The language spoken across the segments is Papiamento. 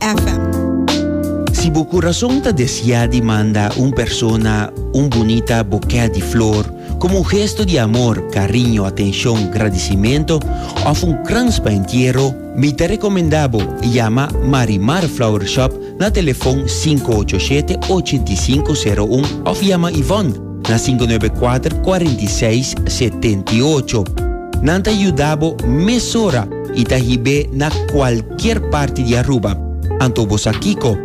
FM. Si bo kurason ta desiá di manda un persona un bunita bokè di flor komo un gesto di amor, kariño, atenshon, gradisimentu òf un krans pa entiero, mi ta rekomendá bo yama Marimar Flower Shop na telefòn sinku ocho shete, ochenta i sinku, seru un òf yama Yvonne, na sinku nuebe kuater kuarenta i seis setenta i ocho. Nan ta yuda bo mesora i ta hib'é na kualkier parti di Aruba. Anto bo sa kiko?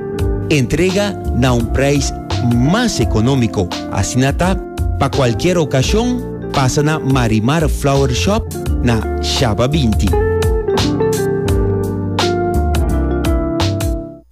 Entrega na un preis mas ekonómiko. Asina ta, pa kualkier okashon, pasa na Marimar Flower Shop na Shaba binti.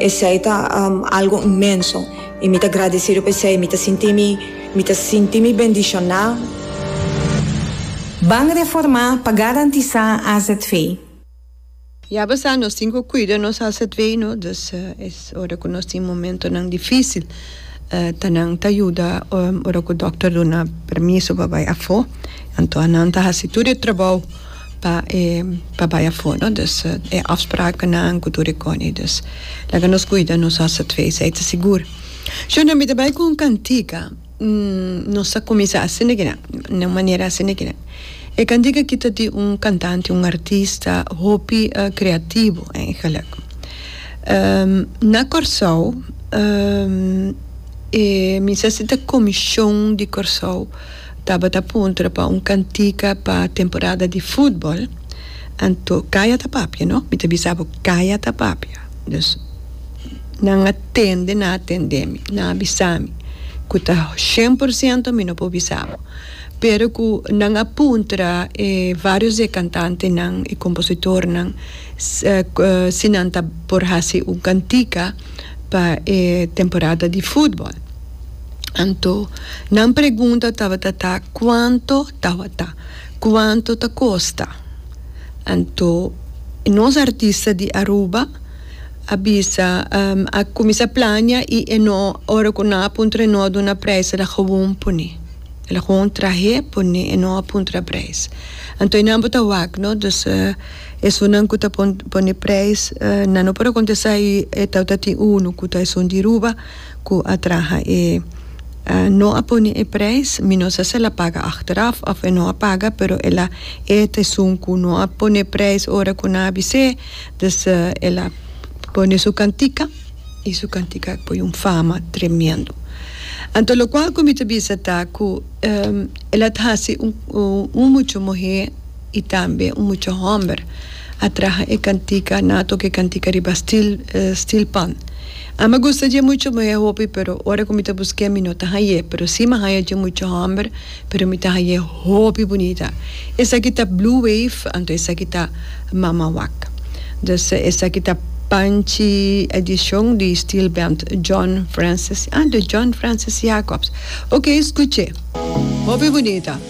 Esei ta algo inmenso i mi ta gradesido pa esei. Mi ta sinti mi, mi ta sinti mi bendishoná. Ban reformá pa garantisá azv. Ya bo sa, nos tin ku kuida nos azv, no? Dus es ora ku nos tin momentonan difísil, ta nan ta yuda ora ku dòkter duna permiso pa bai afó. Anto nan ta hasi tur e trabou. pa e pa bai afo no dus e afspraaknan ku tur e kòni dus laga nos kuida nos asa twe esei ta sigur shona mi ta bai ku un kantika nos a kuminsá asina kinan na un manera asina kinan e kantika aki ta di un kantante un artista hopi kreativo eigenlijk na Kòrsou e mi sa si ta komishon di Kòrsou. Tabata puntra pa un cantica pa temporada di futbol, anto caya ta papia no, mi ta bisa bo caya ta papia, dus nan a tende na atende mi, nan a bisa mi, cu ta shen por ciento mi no por bisa bo, pero cu nan a puntra e varios di e cantantenan y compositornan si nan ta por haci un cantica pa e temporada di futbol. Anto, nan pregunta tabata ta, Kuanto tabata? Kuanto ta kosta? Anto, nos artista di Aruba a bisa, um, a kuminsá plania i e no, ora ku nan a puntra e no a duna preis, el a gewoon pone. El a gewoon trah'é, pone, e no a puntra preis. Anto e namba ta wak, no. Dus, esunnan ku ta pone preis, nan no por a kontestá i e tabata tin unu ku ta esun di Aruba. ku a traha e no a pone e prijs, mi no sa si el a paga achteraf of e no a paga, pero el a eet esun ku no a pone prijs ora ku nan a bis'é, dus el a pone su kantika i su kantika a poi un fama tremendo. Anto lokual ku mi ta bisa ta ku el a hasi un muchu muhé i tambe un muchu hòmber a traha e kantika nan a toka e kantika riba stil stil pan. A mi a gusta dje mucho muhé hopi pero ora ku mi ta busk'é mi no ta hañ'é pero si mi a haña dje mucho hòmber pero mi ta hañ'é hopi bunita. Esaki ta Blue Wave anto esaki ta Mama Wak. Dus esaki ta Panchi edishon di Steel Band John Francis ah di John Francis Jacobs. Oké skuch'é. Hopi bunita.